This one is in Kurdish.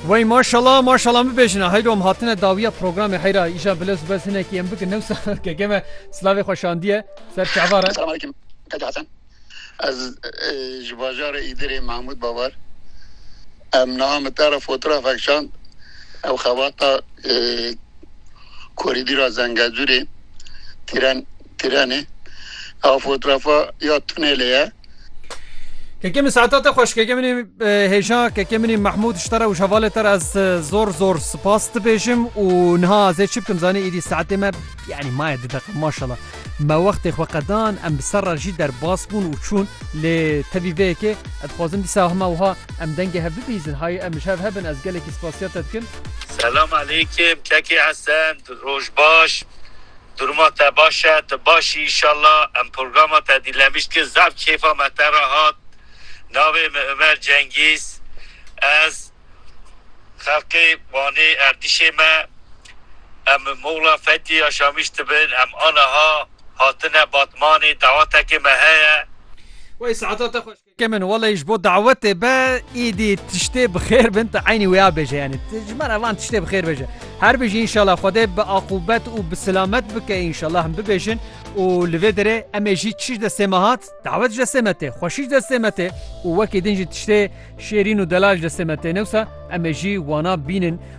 Wey maşala maşala min bêjina heyro em hatine dawiya programê heyra îja bile zu bez hinekî em bikin newsa keke me silavê xwe şandiye ser şeva re. Selam aleyküm Keke Hesen. Ez ji bajarê Îdirê Mahmûd Babar. Em niha min te re fotrafek şand ew xebata korîdîra Zengezûrê tîren Tiranê. A fotoğrafa ya tunelê ye. Keke min saeta te xweş keke minê hêja keke minê Mahmud ji te re û ji hevalê te re ez zor zor spas dibêjim û niha ez ê çi bikim zanî êdî saetê me yanî maye di deqe maşala me wextê xwe qedan em bi ser re jî derbas bûn û çûn lê tevî vê yekê ez dixwazim dîsa hema wiha em dengê hev bibîzin hay em ji hev hebin ez gelekî spasiya te dikim Selam aleykim kekê Esen roj baş Duruma te baş e? Tu baş î înşallah? Em programa te dîlemiş dikin. Zaf kêfa me te re hat. Navê min Umer Cengîz. Ez xelkê Wanê Erdîşê me. Em bi Moxla Fetî ya Şamîş dibin. Em aniha hatine Batmanê. Dawetekê me heye. Wey saeta te xweş. Kêkê min welay ji bo dawetê be îdî tiştê bi xêr bin tu eynî wêya bêje yanî tu ji me re van tiştê bi xêr bêje. Her bijî înşallah Xwedê bi aqûbet û bi silamet bike înşallah him bibêjin û li vê derê em ê jî çiş destê me hat dawet ji destê me tê xweşî ji destê me tê û wekî din jî tiştê şêrîn û delal ji destê me tê newsa em ê jî wana bînin